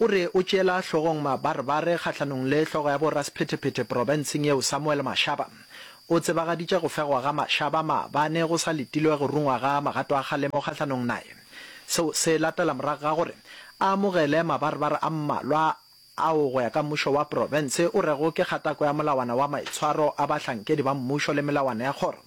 O re o tšeela hlogong mabarebare kgahlanong le hlogo ya borasephetephete profenseng yeo Samuel Mashaba. O tsebagaditše go fegwa ga Mashaba maabane go sa letilwe go rungwa ga magato a kgalemo kgahlanong naye. Seo se latela morago ga gore a amogele mabarebare a mmalwa ao go ya ka mmušo wa profense o rego ke kgatako ya molawana wa maitshwaro a bahlankedi ba mmušo le melawana ya kgoro.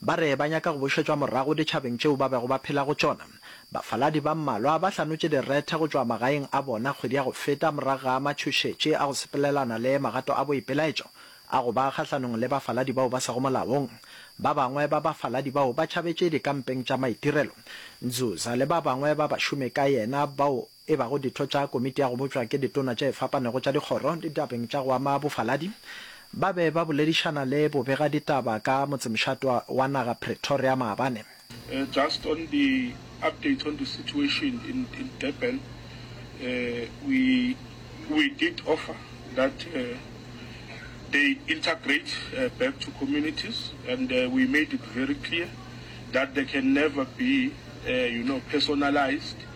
Ba re ba nyaka go bušetšwa morago ditšhabeng tšeo ba bego ba phela go tšona. Bafaladi ba mmalwa ba hlanotše direthe go tšwa magaeng a bona kgwedi ya go feta morago ga matšhošetši a go sepelelana le magato a boipelaetšo a go ba kgahlanong le bafaladi bao ba sego molaong. Ba bangwe ba bafaladi bao ba tšhabetše dikampeng tša maitirelo. Nzuza le ba bangwe ba bašomi ka yena bao e bago ditho tša Komiti ya go Bopša ke Ditona tše fapanego tša dikgoro ditabeng tša go ama bofaladi, ba be ba boledišana le bobegaditaba ka motsemšatwa wa naga Pretoria maabane. Just on the update on the situation in in Durban, we we did offer that they integrate back to communities and we made it very clear that there can never be you know personalised.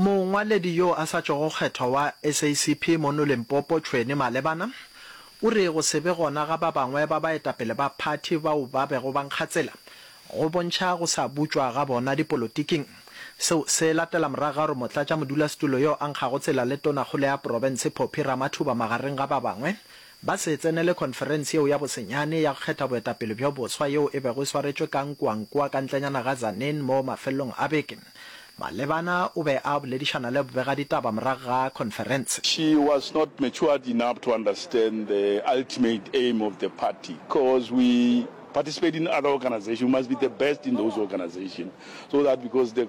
Mongwaledi yo a sa tšwago kgethwa wa SACP mono Limpopo, Tshweni Malebana, o re go se be gona ga ba bangwe ba baetapele ba phathi bao ba bego ba nkga tsela go bontšha go sa butšwa ga bona dipolotiking. Seo se latela morago ga gore motlatšamodulasetulo yo a nkgago tsela le tonakgolo ya profense Phophi Ramathuba magareng ga ba bangwe ba se tsenele khonferense yeo ya bosenyane ya go kgetha boetapele bjo boswa yeo e bego e swaretšwe ka Nkwankwa ka ntlenyana ga Tzaneen mo mafelelong a beke. Malebana o be a boledišana le bobegaditaba morago ga khonferense. She was not matured enough to understand the ultimate aim of the party coz we participate in other organization we must be the best in those organization so that because the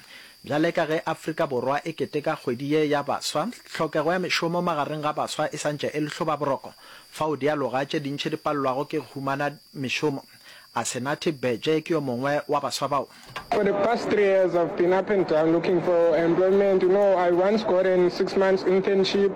Bjale ka ge Afrika Borwa e keteka kgwedi ye ya baswa, tlhokego ya mešomo magareng ga baswa e sa ntše e le hlobaboroko, fao dialoga tše dintši di palelwago ke go humana mešomo. Asenathi Beje ke yo mongwe wa baswa bao. For the past three years I've been up and down looking for employment, you know I once got an six months internship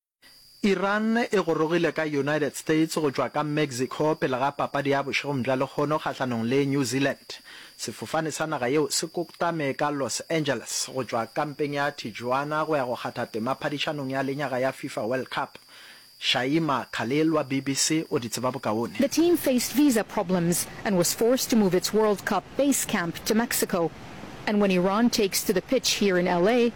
Iran e gorogile ka United States go tšwa ka Mexico pele ga papadi ya bošegong bja lekgono kgahlanong le New Zealand. Sefofane sa naga yeo se koktame ka Los Angeles go tšwa kampeng ya Tijuana go ya go kgatha tema phadišanong ya lenyaga ya Fifa World Cup. Shaima Khalil wa BBC o di tseba bokaone. The team faced visa problems and was forced to move its World Cup base camp to Mexico. And when Iran takes to the pitch here in LA,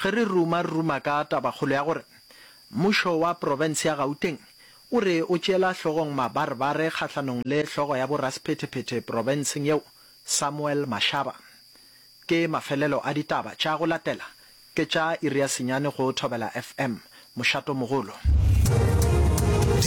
Ge re ruma, re ruma ka tabakgolo ya gore Mmušo wa Profense ya Gauteng o re o tšeela hlogong mabarebare kgahlanong le hlogo ya borasephetephete profenseng yeo, Samuel Mashaba. Ke mafelelo a ditaba tša go latela ke tša iri ya senyane go Thobela FM, Mošato-mogolo.